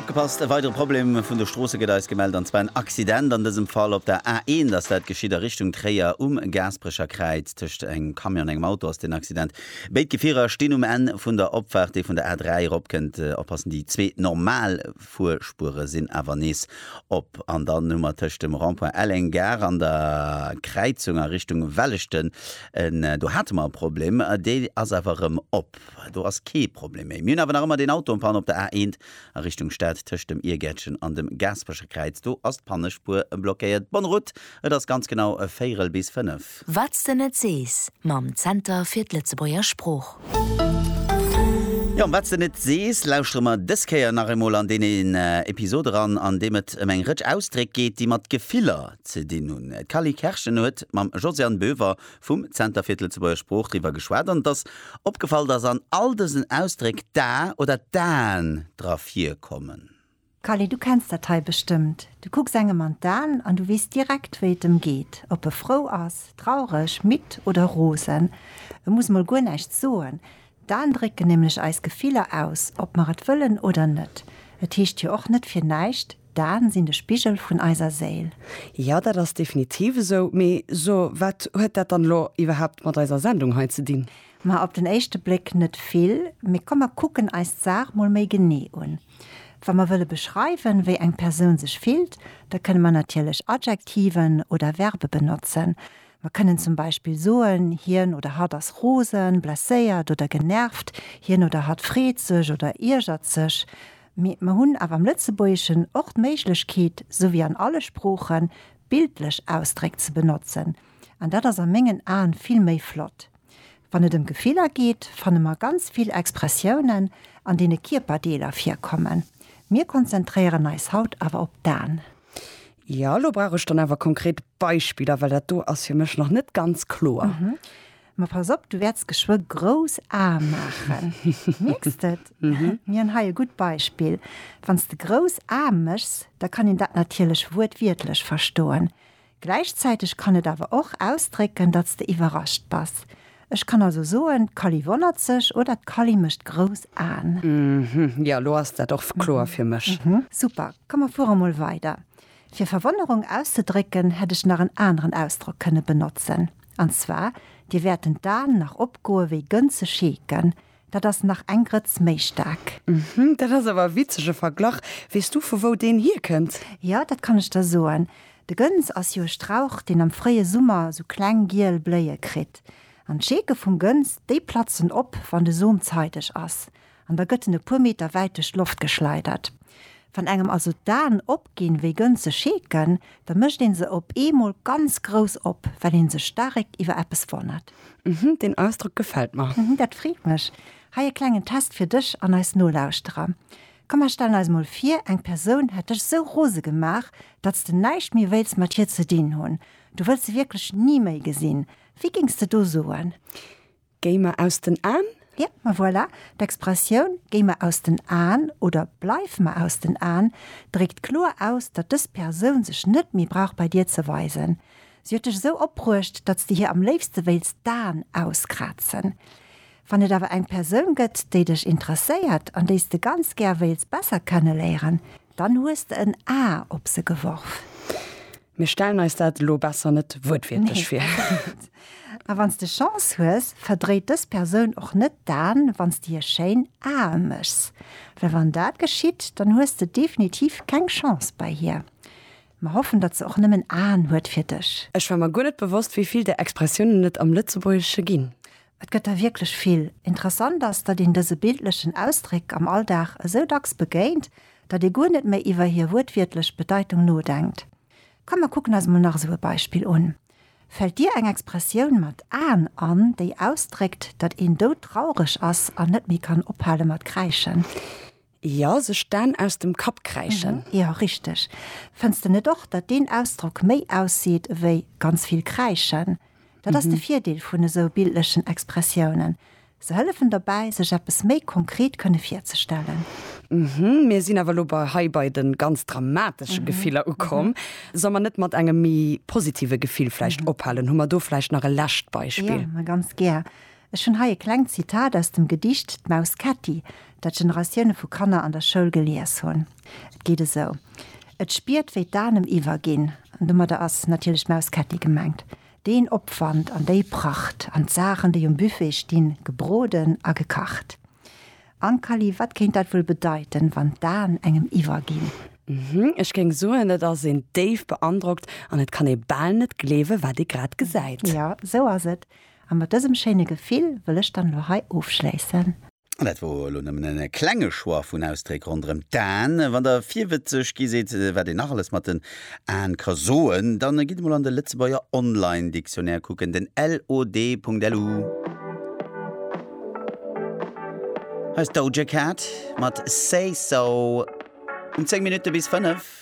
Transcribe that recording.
Opgepasst, e weidere Problem vun de Stroosse gëtt eis gemellt, an zwar en Accident, an dësem Fall op der A1 ass dat geschitt a Richtung Tréier. Um Gaasperecher Kräiz tëscht engem Camion an engem Auto ass den Accident. Béid Gefierer stinn um Enn vun der Opfaart, déi vun der A3 eropkënnt. Oppassen, déi zwee normal. D'Fuerspuere sinn awer nees op an dann hu mer tëscht dem Rond-point Elleng, Gare an der Kräizung a Richtung Welleschten, do hate mer e Problem, dee ass awer erëm op, do ass kee Problem méi. Mir hunn awer nach ëmmer deen Auto en panne op der A1 a Richtung Stad tëscht dem Iergäertchen an dem Gaaspecherkräiz, do ass d'Pannespuer blockéiert. Bonne route, et ass ganz genau véierel bis fënnef. Wat's de net sees mam Zenter fir d'Lëtzebuerger Sprooch. Jo, an Wat's de net sees lauschtere mer dës Kéier nach eemol an deen een Episod eran, an deem et ëm eng Rëtsch Ausdréck geet, déi mat Gefiller ze dinn hunn. D'Cally Kerschen huet mam Josiane Boever vum Zenter fir d'Lëtzebuerger Sprooch driwwer geschwat an et ass opgefall, dass an all dësen Ausdréck d'A oder d'An dra virkommen. Kalle, du kenns dat hei bestëmmt, du kucks engem an d'An an du weess direkt, wéi et em geet, ob e frou ass, traureg, midd oder rosen. E muss mol guer näischt soen, d'An drécken nämlech eis Gefiller aus, ob mer et wëllen oder net. Et heescht jo och net fir näischt, d'An sinn de Spigel vun eiser Séil. Jo, dat ass definitiv esou. Mee so, wat huet dat dann elo iwwerhaapt mat eiser Sendung hei ze dinn? Ma op den éischte Bléck net vill. Mee komm, mer kucken eis d'Saach mol méi genee un. Wa mer wëlle beschreiwen, wéi eng Persoun sech fillt, da kënne mer natierlech Adjektiven oder Verbe benotzen. Mer kënnen zum Beispill soen, Hien oder hatt ass rosen, blesséiert oder genervt. Hien oder hatt freet sech oder iergert sech. Mee mer hunn awer am Lëtzebuergeschen och d'Méiglechkeet, sou wéi an alle Sproochen, bildlech Ausdréck ze benotzen. An dat ass a mengen Aen vill méi flott. Wann et ëm Gefiller geet, fanne mer ganz vill Expressiounen, an deene Kierperdeeler virkommen. Mir konzentréieren eis haut awer op d'Aen. Jo, lo brauch ech dann awer konkret Beispiller, well dat do ass fir mech nach net ganz kloer. Ma pass op, du wäerts geschwë grouss Ae maachen. Mierks de et? Mir hunn hei e gutt Beispill. Wann s de grouss Ae méchs, da kann een dat natierlech wuertwiertlech verstoen. Gläichzäiteg kann et awer och ausdrécken, datt s de iwwerrascht bass. Ech kann also soen, d'Kally wonnert sech oder d'Kally mécht grouss Aen. Ëhm, jo, elo ass dat och kloer fir mech. Super, komm mer fuere mol weider. Fir Verwonnerung auszedrécken, hätt ech nach en aneren Ausdrock kënne benotzen. An zwar, Dir wäerten d'Aen nach opgoe wéi Gënze scheeken. Dat ass nach eng Grëtz méi staark. Uhmm, dat ass awer e witzege Verglach. Weess du, vu wou deen hierkënnt? Jo, dat kann ech der soen. De Gëns ass jo e Strauch, deen am fréie Summer esou kleng giel Bléie kritt. An d'Scheeke vum Gëns, déi platzen op, wann de Som zeideg ass. An da gëtt en e puer Meter wäit duerch d'Loft geschleidert. Wann engem also d'Aen opginn wéi gënze Scheeken, da mécht een se op eemol ganz grouss op, well een sech staarek iwwer eppes wonnert. Mhm, deen Ausdrock gefält mer. Mhm, dat freet mech. Hei e klengen Test fir dech an eis Nolauschterer. Komm, mer stellen eis mol vir, eng Persoun hätt dech sou rose gemaach, datt s de näischt méi wéilts mat hir ze dinn hunn. Du wëlls se wierklech ni méi gesinn. Wéi géings de do soen? Géi mer aus den Aen? Yep, ma voilà, d'Expressioun Géi mer aus den Aen oder Bleif mer aus den Aen dréckt kloer aus, datt dës Persoun sech net méi brauch bei dir ze weisen. Si huet dech esou opbruecht, datt s de hir am léifste wéilts d'Aen auskrazen. Wann et awer eng Persoun gëtt, déi dech interesséiert an déi s de ganz gär wéils besser kenneléieren, Dann hues de en A op se geworf. Mir stellen eis dat elo besser net wuertwiertlech vir. A wann s de Chance hues, verdréit dës Persoun och net d'Aen, wann s de hir schéin Ae méchs. Well wann dat geschitt, dann hues de definitiv keng Chance bei hir. Mer hoffen datt se och nëmmen Aen huet fir dech. Ech war mer guer net bewosst wéi vill där Expressiounen et am Lëtzebuergesche ginn. Et gëtt der wierklech vill. Interessant ass, datt een dëse bildlechen Ausdréck am Alldag esou dacks begéint, datt ee guer net méi iwwer hir wuertwiertlech Bedeitung nodenkt. Komm mer kucken eis mol nach esou e Beispill un. Fält dir eng Expressioun mat Aen an, déi ausdréckt, datt een doudtraureg ass an net méi kann ophale mat kräischen? Jo, sech d'Aan aus dem Kapp kräischen. Mhm, jo, richteg. Fënns de net och, datt deen Ausdrock méi ausseet ewéi ganz vill kräischen? Dat ass de Virdeel vun esou bildlechen Expressiounen, se hëllefen dobäi, sech eppes méi konkret kënne virzestellen. Mhm, mir sinn awer elo bei hei bei de ganz dramatesche Gefiller ukomm. Solle mer net mat engem méi positive Gefill vläicht ophalen? Hu mer do vläicht nach e lescht Beispill? Jo, ma ganz gär. Ech hunn hei e klengt Zitat aus dem Gedicht D'Maus Ketti, dat Generatioune vu Kanner an der Schoul gelies hunn. Et geet esou, Et spiert, wéi d'Anem iwwerginn, an domadder ass natierlech d'Maus Ketti gemengt, deen Opwand an déi Pracht an d'Saachen, déi um Buffet stinn, gebroden a gekacht. Ankali, Wat kéint dat wuel bedeiten, wann d'An engem iwwerginn? Hm, ech géing soen, et ass een déif beandrockt an et kann ee bal net gleewe wat ee grad gesäit. Jo, esou ass et. A mat dësem schéine Gefill wëll ech dann elo hei ofschléissen. An dat wor elo nëmmen e klenge Choix vun Ausdréck ronderëm d'Aen. Wann der virwëtzeg gi sidd, wat een nach alles mat den Aen ka soen, da gitt emol an de Lëtzebuerger Online Dictionnaire kucken, den LOD.lu. Hei ass d'Doja Cat mat Say So um 10 Minutte bis 5.